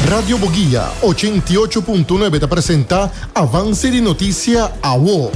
Radio Boguia, ochenta i ocho punto nuebe ta presenta avanse di notisia awo.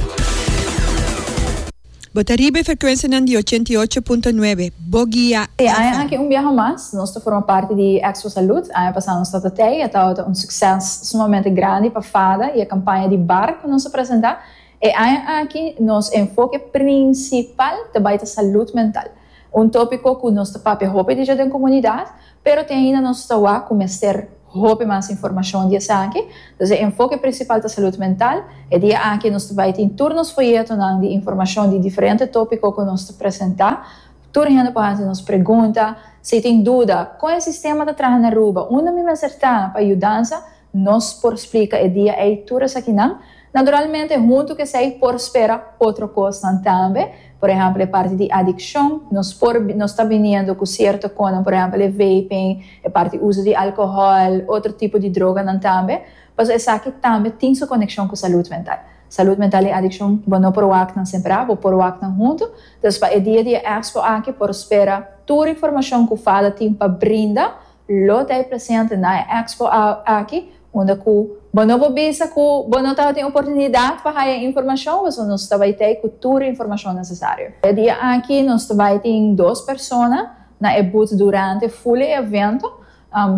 Bo ta riba e frekuensianan di ochenta i ocho punto nuebe, Boguia E aña aki un biaha mas nos ta forma parti di Expo Salud. Aña pasá nos tabata tei, e tabata un sukses sumamente grandi pa fada i e kampaña di bar ku nos a presentá. E aña aki nos enfoke prinsipal ta bai ta salud mental. Un tópiko ku nos ta papia hopi di dja den komunidat, pero tin ainda nos ta wak ku mester hopi mas informashon di esaki. Entonces e enfoke prinsipal ta salud mental. E dia aki nos ta bai tin tur nos foyetonan di informashon di diferente tópiko ku nos ta presentá. Tur hende por hasi nos pregunta. Si tin duda, kon e sistema ta traha na Aruba? Unda mi mester ta pa yudansa? Nos por splika e dia ei tur esakinan. Naturalmente, huntu ku esei por spera otro kosnan tambe. Por ehèmpel, e parti di adikshon. Nos por, nos ta biniendo ku sierto konan, por ehèmpel e vaping, e parti uso di alkohòl, otro tipo di droganan tambe. Pasobra esaki tambe tin su konekshon ku salud mental. Salud mental i adikshon bo no por wak nan separá, bo por wak nan huntu. Dus pa e dia di e èkspo aki por spera tur informashon ku Fada tin pa brinda. Lo ta e presente na e expo aki unda cu bo no por bisa cu bo no tabatin oportunidad pa haya informacion, pasobra nos ta bay tey cu tur informacion necesario. E dia aki nos ta bay tin dos persona na e booth durante full e evento,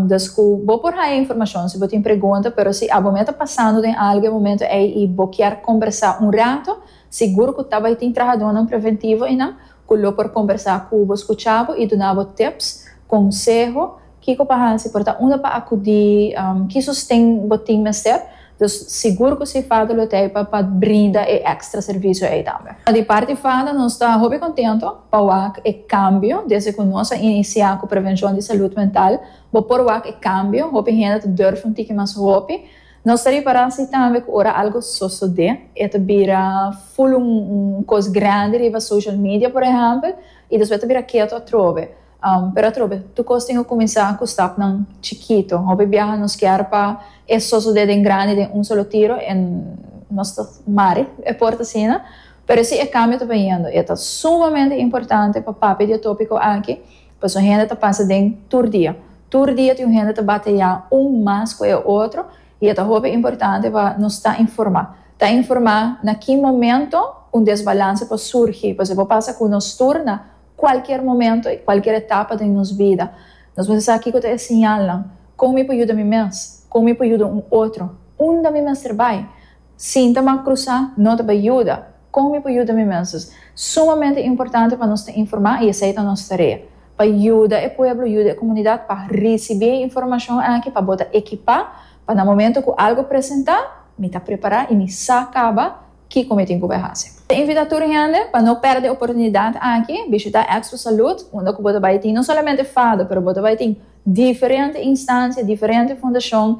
dus cu bo por haya informacion si bo tin pregunta, pero si abome ta pasando den algo e momento ey y bo kier combersa un rato, sigur cu ta bay tin trahadonan preventivo eynan ku lo por kombersá ku bo, skuchá bo i duna bo tips, konseho, kiko pa hasi, por ta unda pa akudí, ki sosten bo tin mester. Dus sigur ku si fada lo t'ei pa pa brinda e èkstra servisio ei tambe. Di parti fada nos ta hopi kontentu pa wak e kambio. Desde ku nos a inisiá ku prevenshon di salud mental, bo por wak e kambio. Hopi hende ta durf un tiki mas hopi. Nos ta repará si tambe ku ora algu sosodé e ta bira ful un kos grandi riba social media por ehèmpel i despues ta bira ketu atrobe. Pero atrobe tur kos tin ku kuminsá ku stapnan chikitu. Hopi biaha nos kier pa e sosodé den grandi den un solo tiro en nos ta mari e port asina. Pero si e kambio ta biniendo e ta sumamente importante pa papia di e tópiko aki. Pasobra hende ta pasa den tur dia. Tur dia tin un hende ta bateyá un mas ku e otro i e ta hopi importante pa nos ta informá. Ta informá na ki momento un desbalanse por surgi, pasobra e por pasa ku nos tur na kualker momento i kualker etapa den nos bida. Nos mester sa kiko ta e siñalnan. Kon mi por yuda mi mes? Kon mi por yuda un otro? Unda mi mester bai? Sinta ma krusá no ta bai yuda. Kon mi por yuda mi mensas? Sumamente importante pa nos ta informá i esei ta nos tarea. Pa yuda e pueblo, yuda e komunidat pa risibí e informashon aki pa bo ta ekipá pa na momentu ku algu presentá, mi ta prepará i mi sa kaba kiko mi tin ku bai hasi. Ta invitá tur hende pa no pèrdè e oportunidat aki, bishitá Expo Salud unda ku bo ta bai tin no solamente fado pero bo ta bai tin diferente instansia, diferente fundashon,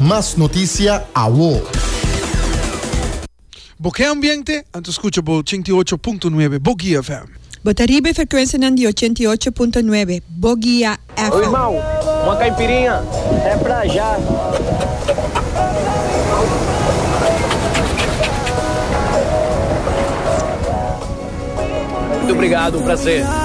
Mas noticia awo. Bo ke ambiente? Anto skucha bo ochenta i ocho punto nuebe Bo Guia FM. Bo ta riba e frekuensianan di ochenta i ocho punto nuebe Bo Guia FM. Obrigado, um prazer.